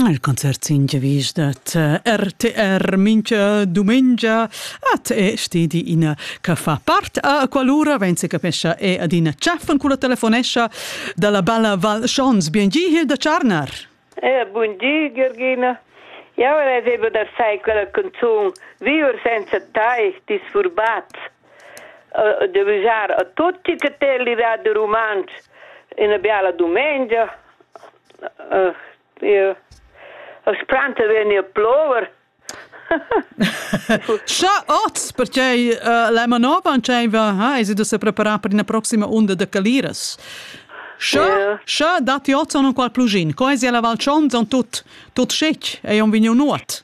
Il concert sin giavisch dat eh, RTR mincha dumengia at e stedi ina che fa part a qualura wenn se capescha e adina chaffen culla telefonescha dalla balla Val Schons. Biengi hier da Charnar. Eh, buondì Georgina. Ja ora avevo da sai quella canzun Viver senza tai disfurbat. eh, de visar a tutti che te l'ira de romanz in biala domenica eh, io spranta veni a plover Scha oz, perché uh, la manova va, ha, es da se preparar per una prossima onda de caliras. Scha, yeah. scha dati oz on qual plugin, co es la Val Schon, son tut, tut schic, e on vigno nuot.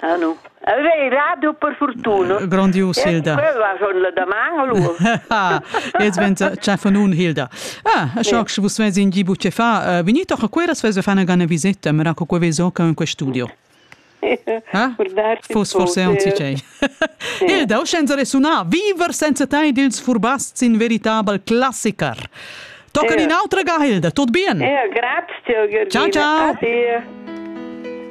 Ah no. Vei, rado per fortuna. Grandios Hilda. Quella schon la daman allora. Jetzt wenn c'è von un Hilda. Ah, so che vos vezi in gibu che fa, venite a quella svesa fa una gana visita, mi raccomando quella zoca in questo studio. Ah? Fos forse un cicei. Hilda, o senza resuna, viver senza te dils furbasts in veritabel classiker. Tocan in autra ga, Hilda, tot bien. Ja, grazie, Giorgina. Ciao, ciao. Ade.